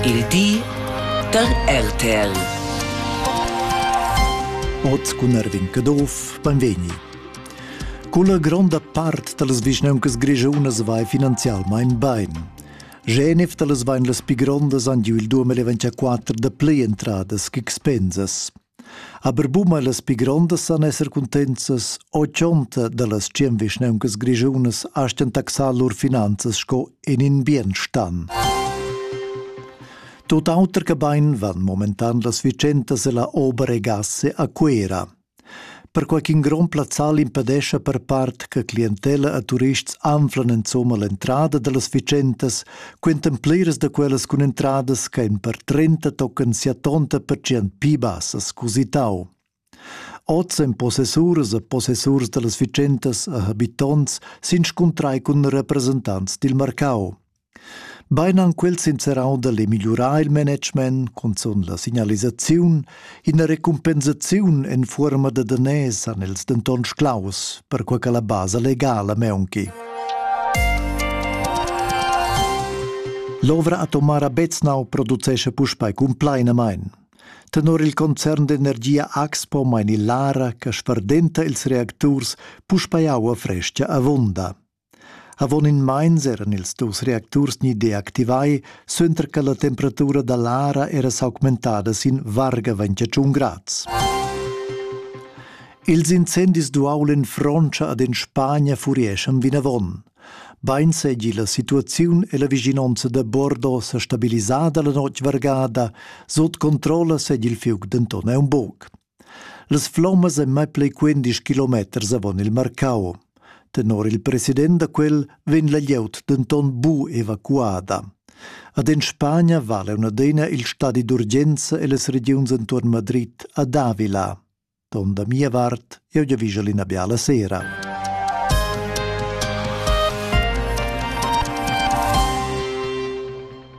Il di dad RTL. Oz cun Erwin Caduff, benvegni. Culla gronda part da las vischnauncas grischunas vai finanzialmain bain. Genef da las vain las pi grondas han giu il 2024 da plei entradas ch'expensas. Aber buma las pi grondas san esser cuntenzas o chonta da las tschien vischneuncas grischunas astgan taxar lur finanzas sco in in bien stan. Tot auter che bain van momentan las vicentas e la ober e gasse a Cuera. perquai ch'in grond plazzal impedescha per part che clientella e turists anflan insumma l'entrada da las fitschentas, quentan pliras da quellas cun entradas che en per 30 tocan sia tonta pertgient pi bassas cusitau. Oz en possessuras e possessurs da las fitschentas e habitonts s'inscuntrai cun representants dil marcau. Bein han quels inserau dall'e migliurar il management, cunzun la signalisaziun, ina recumpensaziun en fuorma da daners han els denton sclaus, perquei che la basa legala meunchi. L'ovra atomara Beznau producesce puspei cumplainamein. Tenor il concern d'energia Axpo mein il Lara che sferdenta ils reacturs puspei aua fresca avunda. Avon in meins eran ils dus reacturs ni deactivai suenter che la temperatura da l'ara era s'augmentada sin varga 21 grads. Ils incendis d'uaulin Frontscha ad en Spagna furieschan vinavon. Bein seigi la situaziun e la vischinonza da Bordeaux sa stabilisada la notg vargada, sut controlla segi il fiug denton aunc buc. Las flommas ein mai pli quindisch kilometers avon il marcau. Tenor il president da quel vegn la glieud denton bu evacuada. Ad en Spagna vala una adina il stadi d'urgenza e las regiuns entuorn Madrid ad Avila. Don da mia vart, eu giavischa l'ina biala sera.